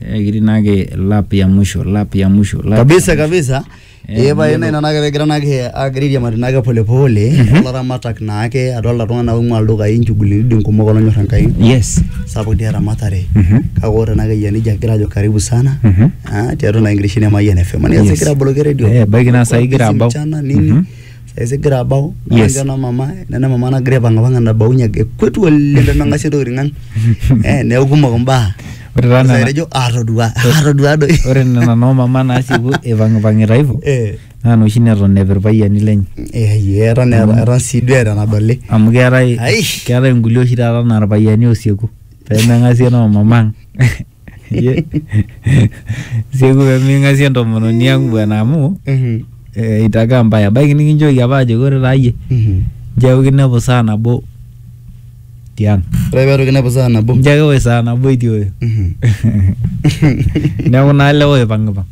Eh, kitii naake lap ya mwisho lap ya mwisho lap kabisa ya mwisho. kabisa Eh, ee pae nena naake pegira naake agira airiamari naake polepole olaramatak naake adolta iltung'anak oing'ua ildukai inchugulini kumok olonyor enkai yes sapuk dii eramatare Mhm. kake ore naake eyia nejia agira ajo karibu sana Mhm. ah, tiatua naa enkirishini e Mayian FM Yes. niasegira aboloki redio Eh, ebaiki naa saa hii igira Busy abau. mchana nini Mhm. esigira abau Yes. yes. ena mama nena mama nagira aipang'apang'a nabaunye ake kwetu oleng pemeng'asie ntokitin ang eh, neeku kumok mbaa Ore taa Sasa nena- etejo atodua atodua doi ore nena noo mama naasipu ipang'ipang'ita hivyo Eh, naa noshi neton epi irpayiani lenye eh, ye, eton eeta- eton sii duo eeta enadoli amu keetae Ai. keetae inkulie oshi taata naa irpayiani osieku pemeng'asie noo mama ang Ye- sieku peming'asie entomononi ang bwana amu Mhm, eh, itakaa mbaya ebaiki nikinchooki apa ajoki ore taa yie mhm. nchoo kinepu saa nabo tiang ore peetu kinepu saa nabo nchoo kiwoi saa nabo itioyo Mhm. neeku naa lewa oipang'ipang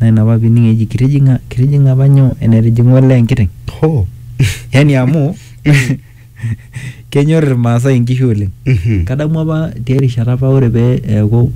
Naa ina apa pining eji kitijing'a kitijing'a apa nyoo enetijing'a olee enkiteng. Hoo. Yani amu kenyor Irmaasai inkishu oleng. Mhm. Kadamu apa tiai rishata apa ore pee eeku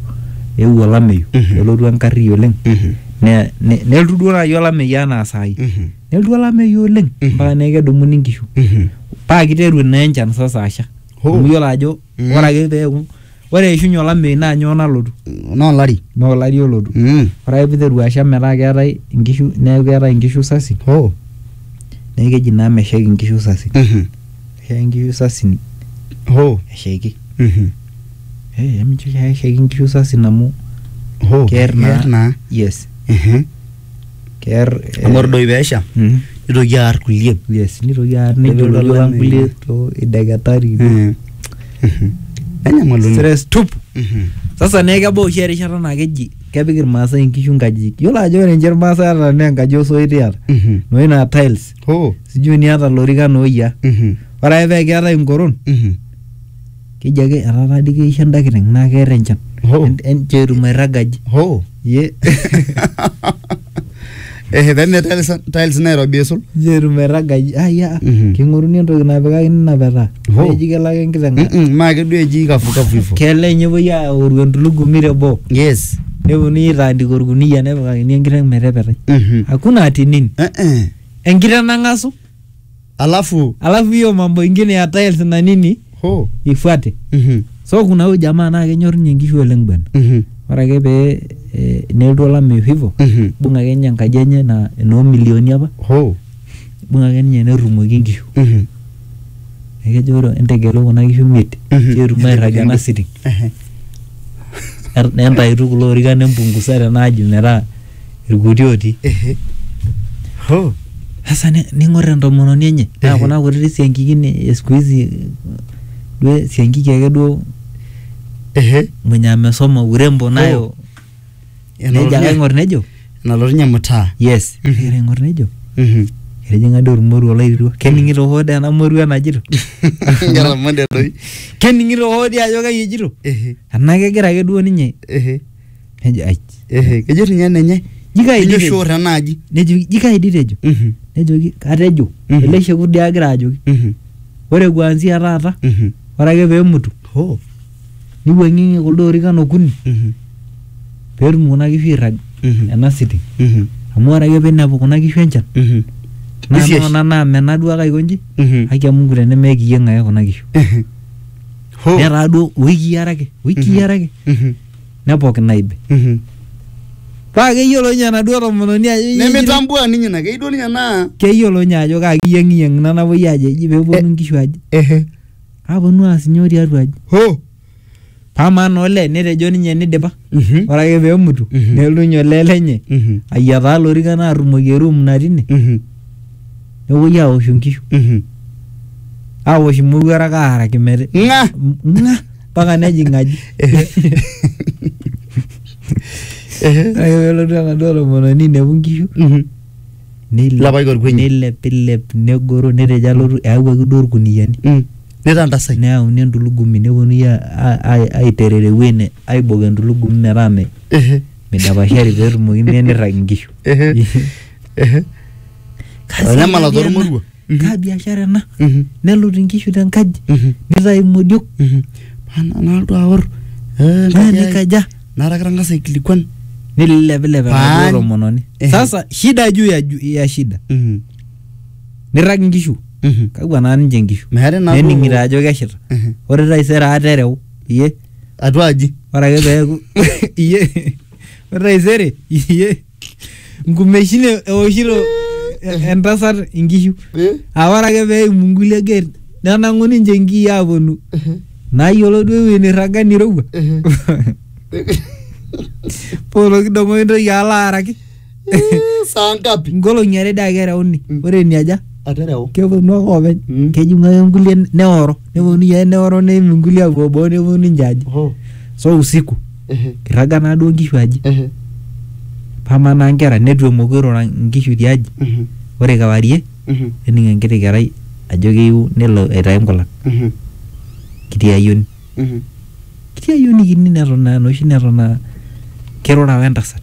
eewuo olameyu Mhm. nelotu enkarri oleng Mhm. ne- ne- nelotu duo naai olameyu enaa saai. Mhm. Nelotu olameyu oleng Mhm. mpaka neeku kedumuni inkishu. Mhm. Paa kiteru naa enchan sasa asha. Hoo. Amu iyiolo ajo Mm. ore ake peeku ore eishunye olameyu naa nyoo nalotu naa olari naa olari olotu Mm. ore ake piteru asha metaa keetae inkishu neeku keetae inkishu sasi oh neeku keji naa meshaiki inkishu sasi Mhm. meshaiki inkishu sasi oh eshaiki Mhm. Eh, emincho eshaiki inkishu sasi amu oh keer naa naa yes Mhm. kear eh, amu ore doi peesha mm, nitoki aar kulie yes nitoki aar Nipik nejo lolo ang olameyu. kulie to ideketari Mm. Mhm. Enyamalu ina. stress tup Mhm. sasa naa kebau oshi erishata naa keji kepik irmaasai inkishu nkajijik yiolo ajo ore ninche irmaasai ata naa enkaji osoit iyata Mhm. noshi naa tiles Oh. sijui niata lorikan ooyia Mhm. ore ake pee keetae inkoron Mhm. keji ake etaata dii keisho enda kiteng naa keer enchan Hoo. En- en- cheetum airragaji hoo ye ehe peme tiles tiles nairobi aisul cheetum airragaji aya Mhm. king'oruni entoki napikakini ina petaa Hoo. neji kelo ake enkiteng Mm-mm, maa keduo eji kafukafu hivo kelo enye epuoi aoru entulugumi teboo yes neponunui aitaandika orkuniyia nepikakini enkiteng metepetai Mhm. hakuna atinin Eh, eh. enkiteng nang'asu alafu alafu hiyo mambo ingine ya tiles na nini ho ifuate Mhm, so kuna huyu jamaa naa kenyor ninye nkishu oleng bwana mhm, ore ake pee eh, nelotu olameyu hivo mhm. ibung ake ninye enkaji enye na enoo milioni apa ho ibung ake ninye nerrumoki nkishu Mhm, ekejo ore entegelu kuna kishu miet Mhm. ketum airrag ena sitting ehe. nentaituku kulo orikan nempungusa tena aji metaa irkuti otii Ehe. Ho. sasa ni- ning'or entomononi enye naa Ehe. kuna kutiti siankikin e siku hizi duo siankiki ake duo Ehe. mwenye amesoma urembo nayo nejo ake aing'or nejo Enalotunye mtaa. yes Mhm. egira aing'or nejo Mhm. etijing'a doi ormoruo olairirua kening'ito hoo doi ena moruo enajito Ngera mande doi. kening'ito hoo doi ajo kai ejito Ehe. enaa kegira ake duo ninye Ehe. nejo ai ehe kejo ninye enenye Jikai kejo ditejo. shor enaaji nejoki jikai ditejo Mhm, nejoki katejo Mhm. ele shekut dii agira ajoki mhm, ore kuanzia taata mhm. ore ake peemutu Hoo, niwuang'ieng'ie kuldo orikan okuni mhm, peetum kuna kishu airrag mhm, ena sitting mhm, amu ore ake pinepu kuna kishu enchan mhm, naa Nisiesh. nona naa mena duo ake aiko nji mhm, haki ya Mungu tenemeekiyieng ake kuna kishu mhm. Hoo, netaa duo wikii are ake wikii Mhm. are ake mhm, nepok naib. Mhm. Paa keyiolo ninye enaduo tomononi ajo iyie- nemitambua ninye ina keyieu duo ninye naa keyiolo ninye ajo kaa kiyeng'iyeng' ina napuoi aajo eji peeponu nkishu aji. ehe Aponu aas nyoo tiatua aji. ho Amaa naa olee netejo ninye nidipa. Mhm. Ore ake peemutu Mhm. nelotu ninye olee lenye Mhm. ayiataa lorikan aarrumoki eruum natii ine Mhm. nepuoi aawoshu nkishu. Mhm. Aawosh imowuarak aaraki meti ng'a Ng'a mpaka nejing aji Ehe. ore ake pelotu enaduo tomononi inepu nkishu Mhm. neilep- Lapaik orkuenyi. neilepilep negoro netejo alotu eawuaki duo irkuniyiani Mm. Nitantasai. neyauni entulugumi neponui a- a- a- aiterer ewuei ne- aibok entulugumi metaa me- Ehe. midapashari peetumoki mee nirrag inkishu Ehe. Ehe. Kazi Olemala natii ena. tormorua. kaa biashara ena Mhm. nelut inkishu tenkaji Mhm. nitayu imodiok Mhm. Paa na- nalotu aor eh, naa enkaji ai. nikaja naata kitangasa aikilikuan nililepilep Paan. enaduo tomononi Ehe. sasa shida juu ya, ju- ya shida Mhm. nirrag inkishu Mhm. kakwa naa ninche inkishu meeta enaa nening'ito duo- ajo keshita Mhm. ore taisere aata ereu iye atua aji ore ake peeku iye ore taisere iye nkumeshin e- eoshito eh, entasat inkishu Eh? aa ore ake pee eimu nkulie gate nenang'u ninche nkii aaponu nayiolo duo ewueji nirraga nirowua poolo kidong'o intoki alo aaraki saa ngapi nkolong'i are dii ake ereuni Mm. ore eniaja atereu keponu ake oopeny Mm. kejing'u ake nkulie neoro neponu yie neoro neim nkulie apuo boo neponu ninche aji so usiku irraga naa duo nkishu aji pama naa nkera netu emoku irura nkishu tiaji ore kewarie nening enkiti kerai ajo keyieu nelo aitayu nkulan kiti ayioni kiti ayioni kini neton aa enoshi neton aa kirura wentasat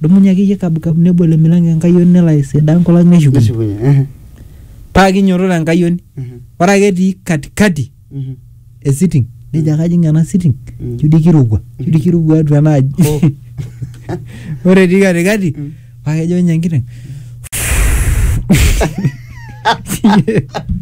Dumunye ake iyie kabukab nebo ele milango enkayioni nelo aisidaa enkolong neshukunye. Neshukunye. Ehe. Paa kinyototo enkayioni. Ehe. Ore ake etii katikati Mhm. e sitting nejo ake ajing ena sitting Mm. ijo dii kirowua ijo dii kirowua atua ena aji. Oh. Ore etii katikati Mm. paa kejo ninye enkiteng.